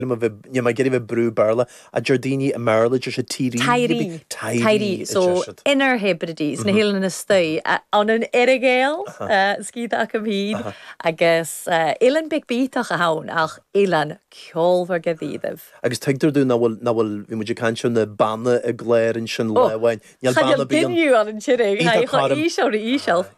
Níl mé ag iarraidh a bheith ag brú Béarla. A deir daoine i mBéarla deir siad Tiree. Tiree. Tiree a So, deir siad. inner Hebrides, na hoileáin istigh, in Earra-Ghàidheal, sciath acu féin, agus oileán beag bídeach atá ann, ach oileán ceolmhar de dhíobh. Agus tuigtear dúinn ná bhfuil, ná bhfuil, bhí muid ag caint ar na beanna i gCléire ansin lá amháin. Níl beanna bíonn. Cha níl binn fiú ann an Tiriodh. Bíonn tá Cha coirm. íseal, tír íseal. Aye.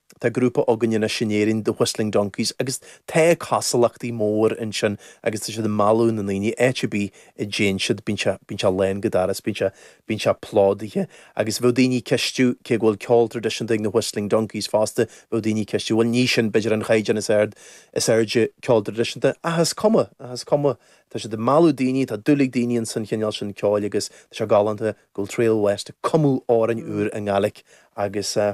Tá grúpa againn anois in Éirinn, The Whistling Donkeys, agus tá cosúlachtaí mór ansin agus tá siad ag mealladh na ndaoine, áit ar bith a dtéann siad bíonn sé, bíonn sé lán go doras, bíonn sé, bíonn sé plódaithe. Agus bheadh daoine ag ceistiú, cé go bhfuil ceol traidisiúnta ag na Whistling Donkeys fosta, bheadh daoine ag ceistiú, bhuel ní sin b'fhéidir an caighdeán is ard, is airde ceoil traidisiúnta ach is cuma, ach is cuma, tá siad ag mealladh daoine, tá dúil ag daoine insan chineál sin ceoil agus tá sé galánta go bhfuil Trail West ag cumadh amhráin úr i nGaeilic agus eh.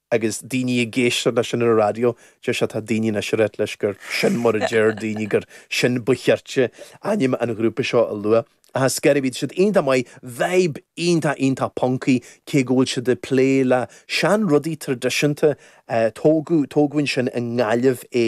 Agus daoine ag éisteacht leis sin ar an radio, deir siad tá daoine anois ar ait leis gur sin mar a deir daoine, gur sin ba chirte ainm an ghrúpa seo a lua. Ach is gaire, bhí siad iontach maith, vibe iontach iontach puncaí, cé go bhfuil siad ag plé le sean rudaí traidisiúnta, tógadh, tógadh ansin i nGaillimh é.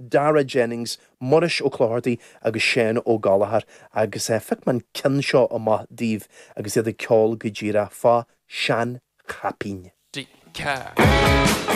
Darragh Jennings, Muiris Ó Clochartaigh agus Seán Ó Gallchóir agus phioc mé an ceann seo amach daoibh agus iad ag ceol go díreach fá Sean Chaipín. Dee Car.